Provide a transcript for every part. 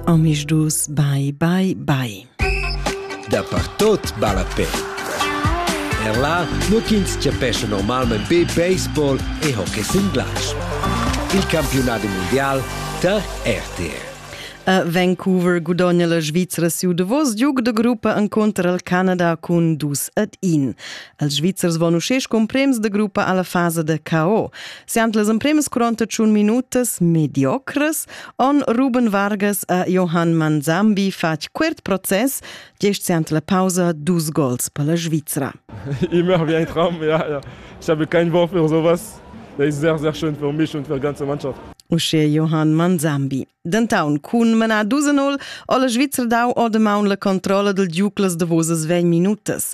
Omisdus bai bai bai. Dapertot balla pe. Er là, nur ch'ins chapescha normalmain be baseball e hockey singlasch. Il campiunat mundial tar RTR. A Vancouver gudogna la Svizra siu davos giug da gruppa enconter al Canada cun dus ad in. Els Svizzers von uschè scumprems da gruppa alla fasa da KO. Siant las empremas 48 minutas mediocres On Ruben Vargas e Johann Manzambi fatg quert process, gest ant la pausa dus gols per la Svizra. Immer wie ein Traum, ja, ja. Ich habe kein Wort für sowas. Das ist sehr, sehr schön für mich und für die ganze Mannschaft. Uschè Johann Manzambi. Dentaun cun manar 2-0 o la Svizra dau o damaun la controlla del Giuclas davosas 20 minutas.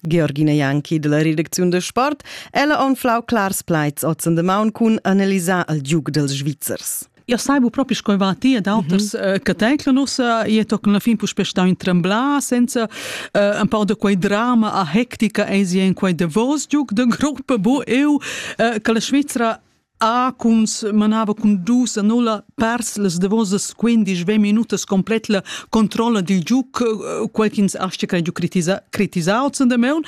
Georgina Janki della redacziun da sport, ella anflau clars plaids ozen de maun cun analisar il giug dels Svizzers. Eu saibu propi sco va ti ed auters mm -hmm. che teclan ussa e toccan la fin puspe stau in tremblar senza uh, un po de quei drama a hectica e in quei davos giug de gruppa bu eu uh, che la Svizzera Ah, cuns manava cun dus a nulla pers las davosas quindisch ve minutas complet la controlla dil giuc, quel ch'ins astga crai giu critisau zun da meun,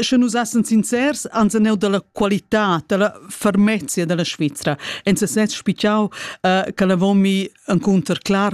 sche nus essen sincers, ans neu dalla qualità, dalla fermezia dalla Svizra. En sesez spichau che la vomi encunter clar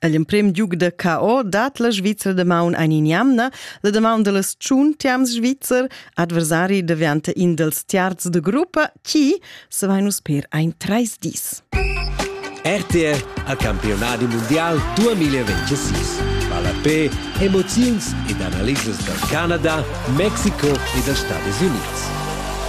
El emprem giug da KO dat la Svizra da maun ein in jamna, la damaun dallas tschun tiams svizzer, adversari daventa in dels tiarz de gruppa, chi se vai nus per ein treis dis. RTR a campionadi mondial 2026. Palapé, emoziuns ed analisas dal Canada, Mexiko e dals Stati Unids.